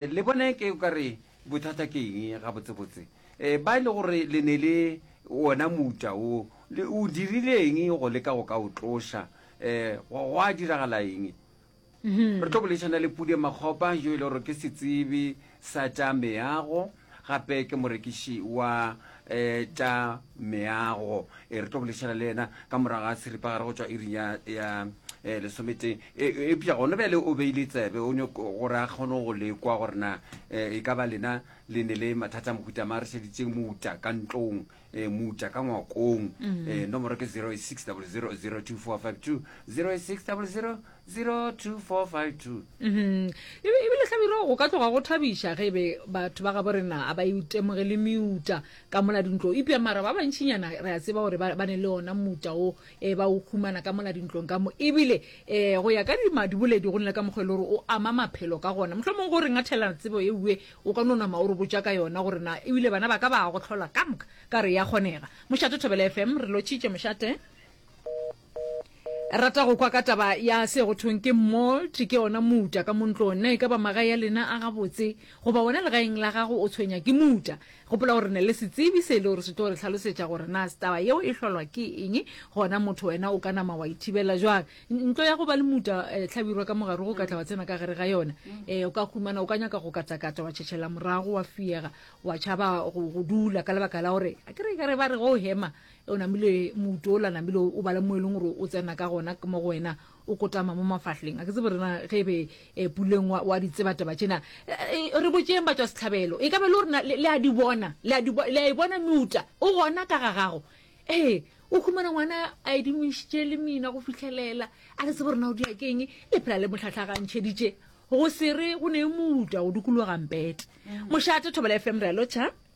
Le bone ke o ka re bothata ke eng gabotsebotse, ba e le gore le ne le wona mouta wo, le o dirile eng go leka go ka o tloša? Gwa diragala eng? Re tlo boledišana le Pudi Makgopa yo e le gore ke setsebi sa tša meago gape ke morekiši wa tša Meago. E re tlo bolešana le yena ka morago ga seripagare go tšwa iring ya eh, lesometee. E, e, epša gone bjale o beile tsebe o nyoko gore a kgone go lekwa gore na eh, e ka ba lena le ne le mathata mohuta ma re šeditseng mouta ka ntlong eh, mouta ka ngwakong mm. eh, nomoro ke 0600024520 0600 02452 ebile hlabiro go ka tloga go thabiša ge e be batho ba gabo rena a ba itemoge le meuta ka mola dintlo ipja mara ba bantšinyana re a tseba gore ba ne le ona mouta o e ba o humana ka mola dintlong ka mo ebile um go ya ka dimadiboledi go nne ka mokgwa e le gore o ama maphelo ka gona mohlho mongwe go re ngathela tsebo e uwe o ka nonama o re botša ka yona gore na ebile bana ba ka ba go tlhola ka moka ka re ya kgonega mošate thobela fm re lotšhitše mošate rata go kwa ka taba ya se go thong ke molt ke ona muta ka montlong na e ka ba magae ya lena a gabotse goba wena legaeng la gago o tshwenya ke muta gopola gore ne le setsebi se e le gore se tlo re tlhalosetša gore na taba yeo e hlolwa ke eng gona motho wena o ka nama wa ithibela jwang ntlo ya go ba le muta eh, hlabirwa ka mogare go katla wa tsena ka gare ga yona eh, o ka humana o ka nyaka go katakata wa tšhetšhela morago wa fiega wa tšhaba go dula ka lebaka la gore a kere e ka re ba re go hema o namile mouto o la namile o bala mo e leng gore o tsena ka gona ke mo go wena o kotama mo mafahleng a ke tsebe rena ge e be eh, puleng wa ditsebataba tšena eh, eh, re botseng ba tswa setlhabelo e ka be le gorena le a di bona le a e bona meuta o gona ka ga gago ee o humana ngwana a e dingwešitše le mina go fitlhelela a re tsebe rena o diakeng le phela le motlhatlhagantšheditše go sere go ne e mouta go dukologa mpete mm. mošate thobela fm re a lotšha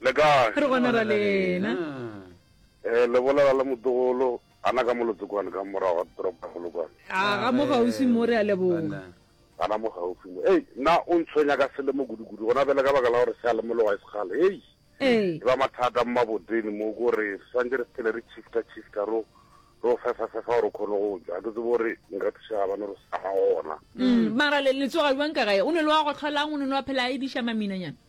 Le kae? Re gona ra lena. Eh, le bolela le motogolo ana ka molotsekwane ka morago ga toropo ya Polokwane. A ga mo gaufi mo re a leboga. Ana mo gaufi mo. Ei, na o ntshwenya ka selemo kudu-kudu gona bjale ka baka la gore se a lemologa e sekgale. Ei. Ee. Ke ba mathata mmaboteni mo ko re swantse re phele re chifta chifta ro ro fefa fefa gore khone go ja. Ke tsebo gore nka thusa ga bana re sa gona. Mm, mara le le tsoga jwang ka gae? O ne le wa go tlholang o ne le wa phela a ediša maminanyana.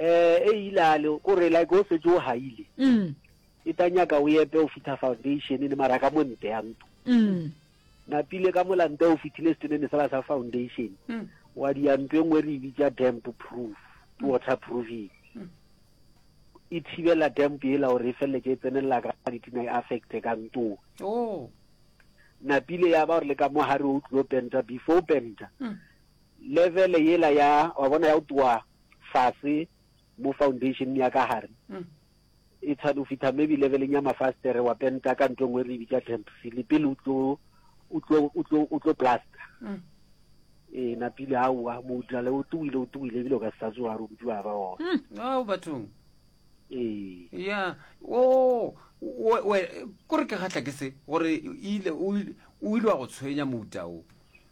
Eh, e ile a le, ko re like o setse o haile. Mm. E ta nyaka o epe o fitha foundation le mara ka monte ya ntu. Mm. Napile ka molante o fitile stenene sala sa foundation. Mm. Wa di ya ntu e nngwe re e bitsa damp proof, mm. water proofing. Mm. E thibela damp ela hore e feleletse e tsenelela ka ditina e affecte ka ntu. Oh. Napile ya ba gore le ka mo hare o tlilo penta before penta. Mm. Level yela ya wa bona ya go twa fase mo foundation ya ka gare e tshwane go fitha maybe leveleng ya mafastere wa penta ka ntlo nngwe re bitsa tempsile pele o tlo o tlo o tlo o tlo plaster mm. e na pele a wa mo utlwale o tuile o tuile ebile o ka sa tsoa re utlwa ba o mm. a o bathong e ya o we kore ke gatla ke se gore ile o ile wa go tshwenya mouta o